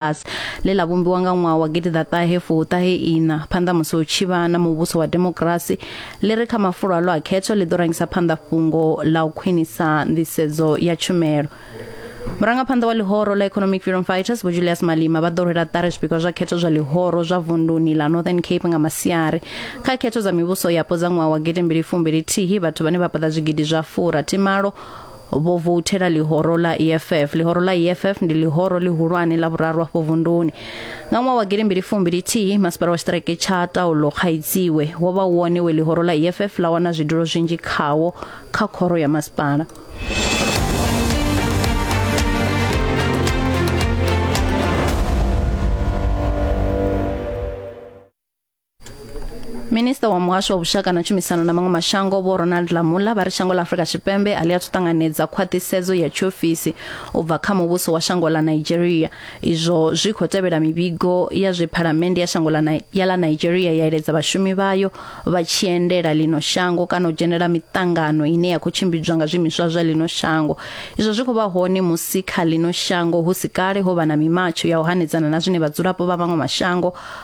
Us, ḽe ḽa vhumbiwa nga ṅwaha wa gidiḓaṱahe fuṱahe iṋa phanḓa musi hu tshi vha na muvhuso wa demokirasi ḽi re kha mafulo aḽo a khetho ḽi ḓo rangisa phanḓa fhungo ḽa u khwinisa nḓisedzo ya tshumelo murangaphanḓa wa ḽihoro ḽa economic freedom fighters vho julius malima vha ḓo rwela ṱari zwipikwa zwa khetho zwa ḽihoro zwa vunduni ḽa northern cape nga masiari kha khetho dza mivhuso yapo dza ṅwaha wa gidimbili fumbili thihi vhathu vhane vha paḓa zwigidi zwa furathimalo vho vouthela ḽihoro ḽa EFF ḽihoro ḽa EFF ndi ḽihoro ḽihulwane ḽa vhuraru afho vunduni nga ṅwaha wa gidi mbili fumbili thihi masipala wa tshiṱireke tsha taulo khaidziwe wo vha wone we ḽihoro ḽa EFF ḽa wana zwidulo zwinzhi khawo kha khoro ya masipala minista wa muhasho wa vhushaka na tshumisano na maṅwe mashango vho ronald lamula vha ri shango ḽa afurika tshipembe a ḽi athu ṱanganedza khwaṱhisedzo ya tshiofisi u bva kha muvhuso wa shango ḽa nigeria izwo zwi khou tevhela mivhigo ya zwe phalamende ya shango ḽa Ni- ya ḽa nigeria ya eledza vhashumi vhayo vha tshi endela ḽino shango kana u dzhenela miṱangano ine ya khou tshimbidzwa nga zwiimiswa zwa ḽino shango izwo zwi khou vha hone musi kha ḽino shango hu si kale ho vha na mimatsho ya u hanedzana na zwine vhadzulapo vha maṅwe mashango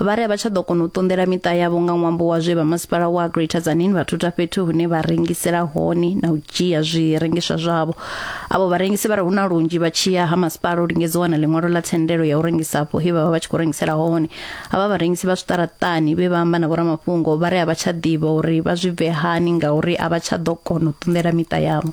vha ri a vha tsha ḓo kona u ṱunḓela miṱa yavho nga ṅwambo wa zwe vha masipala wa Greater Tzaneen vha thutha fhethu hune vha rengisela hone na u dzhia zwirengiswa zwavho avho vharengisi vha ri hu na lunzhi vha tshiya ha masipala u lingedza u wana ḽiṅwalo ḽa thendelo ya u rengisa afho he vha vha vha tshi khou rengisela hone avha vharengisi vha zwiṱaraṱani vhe vha amba na vhoramafhungo vha ri a vha tsha ḓivha uri vha zwi bve hani ngauri a vha tsha ḓo kona u ṱunḓela miṱa yavho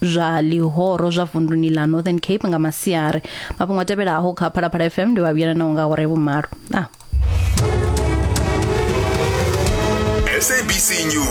zwa ḽihoro zwa vunduni ḽa northern cape nga masiari mafhungo a tevhelaho kha phalaphala fm ndi vha vhuyelanaho nga hore vhumalo ah. sabc news